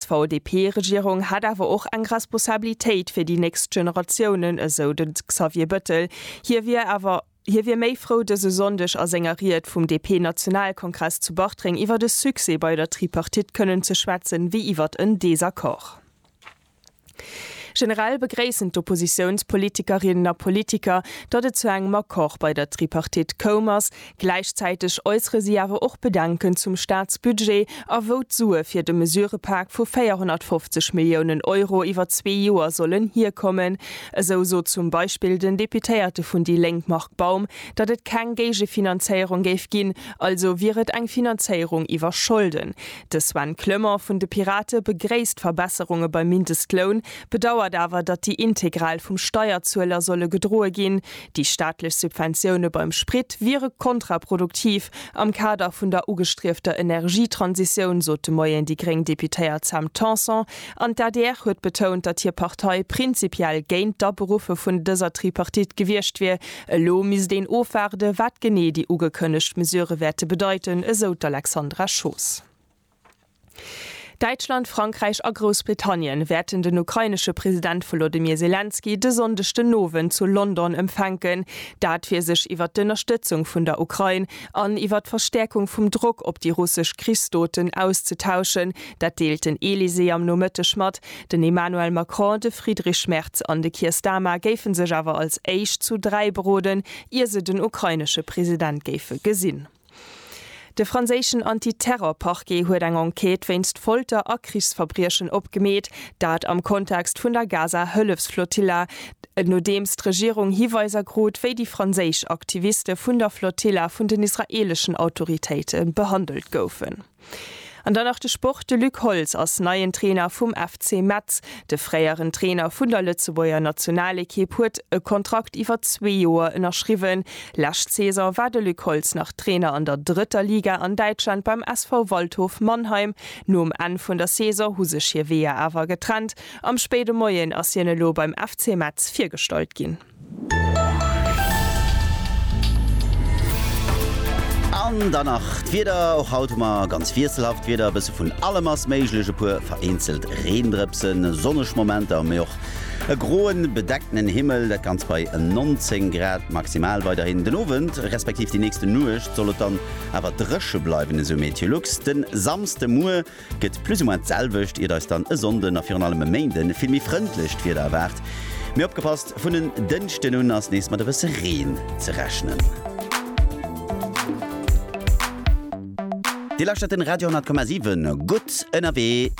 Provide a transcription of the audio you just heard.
D'VDP-Regierung hätt awer och eng Responsabilitéit fir déi nächst Generatiounen, esou de Xavier Bettel. Hie wier awer hie wier méi frou dëse Sonndeg a senger Ried vum DP-Nationalkongress zu Bartreng iwwer e Succès bei der Tripartite kënnen ze schwätzen, wéi iwwer en Desaccord. Generell begréissen d'Oppositiounspolitikerinnen a politiker, datt et zu engem Accord bei der Tripartite koum ass. Gläichzäiteg äussere si awer och Bedenken zum Staatsbudget a wou d'Sue fir de Mesurepak vu 450 Milliounen Euro iwwer zwee Joer sollen hierkommen. Esou sot zum Beispill den Deputéierte vun déi Lénk Marc Baum, datt et keng Géigefinanzéierung géif ginn, also wier et eng Finanzéierung iwwer Scholden. De Sven Clement vun de Pirate begréisst d'Verbesserunge beim Mindestloun, bedauert awer, datt déi integral vum Steierzueler solle gedroe ginn. Déi staatlech Subventioune beim Sprit wiere kontraproduktiv am Kader vun der ugestriefter Energietransitioun, sot de Moien déi gréng Deputéiert Sam Tanson. An d'ADR huet betount, datt hir Partei prinzipiell géint d'Aberuffe vun dëser Tripartite gewiescht wier, Elo misst een ofwaarde wat genee déi ugekënnegt Mesurë wäerte bedeiten, esou d'Alexandra Schoos. Däitschland, Frankräich a Groussbritannien wäerten den ukrainesche President Wolodymyr Selenskyj de Sonndeg den Owend zu London empfänken. Dat fir sech iwwer d'Ënnerstëtzung vun der Ukrain an iwwer d'Verstäerkung vum Drock op déi russesch Krichsdoten auszetauschen. Dat deelt den Elysée am Nomëtteg mat. Den Emmanuel Macron, de Friedrich Merz an de Keir Starmer géife sech awer als éischt zu dräi beroden, ier se den ukrainesche President géife gesinn. De franséischen Anti-Terror-Parquet huet eng Enquête wéinst Folter a Krichsverbriechen opgemeet, dat am Kontext vun der Gaza-Hëllefsflotilla, nodeems d'Regierung Hiweiser krut, wéi déi franséisch Aktiviste vun der Flotilla vun den israeeleschen Autoritéite behandelt goufen. An dann nach de Sport, De Luc Holtz ass neien Trainer vum FC Metz. De fréieren Trainer vun der Lëtzebuerger Nationalekipp huet e Kontrakt iwwer zwee Joer ënnerschriwwen. Lescht Saison war de Luc Holtz nach Trainer an der drëtter Liga an Däitschland beim SV Waldhof Mannheim. Nom Enn vun der Saison hu sech hir Weeër awer getrennt. Am spéide Moien ass hien elo beim FC Metz virgestallt ginn. An dann nach d'Wieder, och haut hu mer ganz wiesselhaft Wieder, e bësse vun allem ass méiglech, e puer vereenzelt Reendrëpsen, sonneg Momenter, mee och e groen, bedeckten Himmel, dat Ganzt bei 19 Grad maximal weiderhin. Den Owend, respektiv déi nächste Nuecht soll et dann awer dréche bleiwen, esou MeteoLux. De Samsdemuer. Gëtt plus ou moins d'selwecht, iert eis dann e Sonnden a virun allem e Méinde vill méi frëndlecht Wieder erwaart. Mee opgepasst, vun en Dënschden un ass nees mat e bësse Reen ze rechnen. Dir lauschtert den Radio 10,7, gutt ënnerwee!